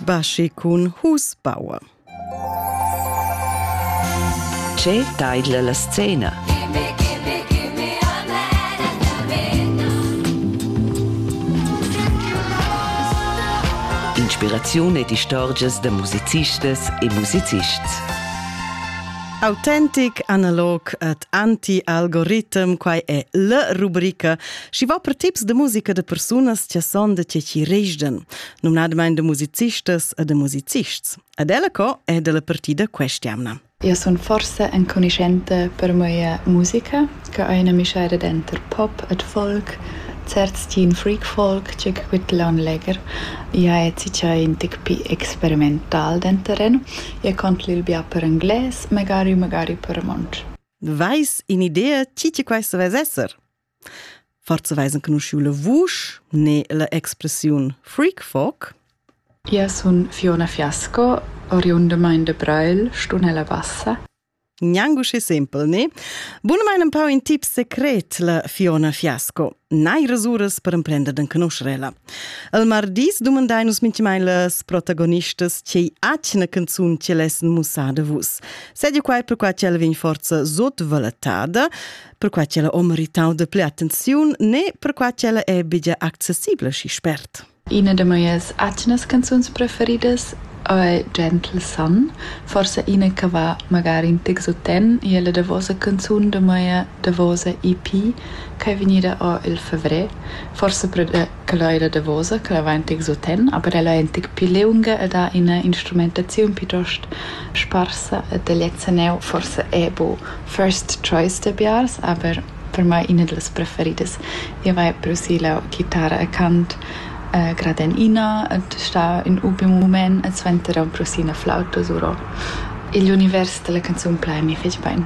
Baschi cun Husbauer. Che taidla la scena? Inspiraziun ed istorgias da musicistas e musicists. Autentic, analog ed anti-algoritm, quai è la rubrica Schi va per tips de musica de persunas che son de che chi režden, numnadamain de musicistas e de musicists. Ed ella co è della partida questiamna. Io sono forse enconoscente per mia musica, che è una miscere dentro pop et folk, certs teen freak folk, che quitlan leger. Ja è cica in tic pi experimental denteren, ja contli il bia per inglés, magari magari per monch. Vais in idea chi che quai se ves esser? Forza veis enconuschiu la vusch ne la expressiun freak folk. Io sun Fiona Fiasco, oriundamaing da Brail, Stunella Bassa. Gnanco schi simpel, ne? Bunamain un pau in tip secret, la Fiona Fiasco. Nai resuras per emprender d'enconoscerela. El mardis dumandai nus minchimai las protagonistas tgei atgna canzun che lessen mussar da vus. Sedia quai per qua che el vegn forza sotvallatada. perquai ch'ella ho meritau de plü attenziun ne perquai ch'ella è bigia accessibla schi spert. Ina de mias atgnas canzuns preferidas è Gentle Sun, forse ina che va magari in tic soten, e è la davosa canzun de mia davosa EP che è vegnida o il fevrer, forse per de Quella ei la davosa che la va en tic suten, aber ella ei en tic pli liunga ed ha ina instrumentaziun piuttost sparsa ed el lezza neu forsa era bu first choice da biars, aber per mei ina dallas preferidas. Jeu vai producir la ghitara e cant eh grad en ina ed star in ultim mument e suenter era producir ina flauta suro. Igl univers dalla canzun plai mi fetg bein.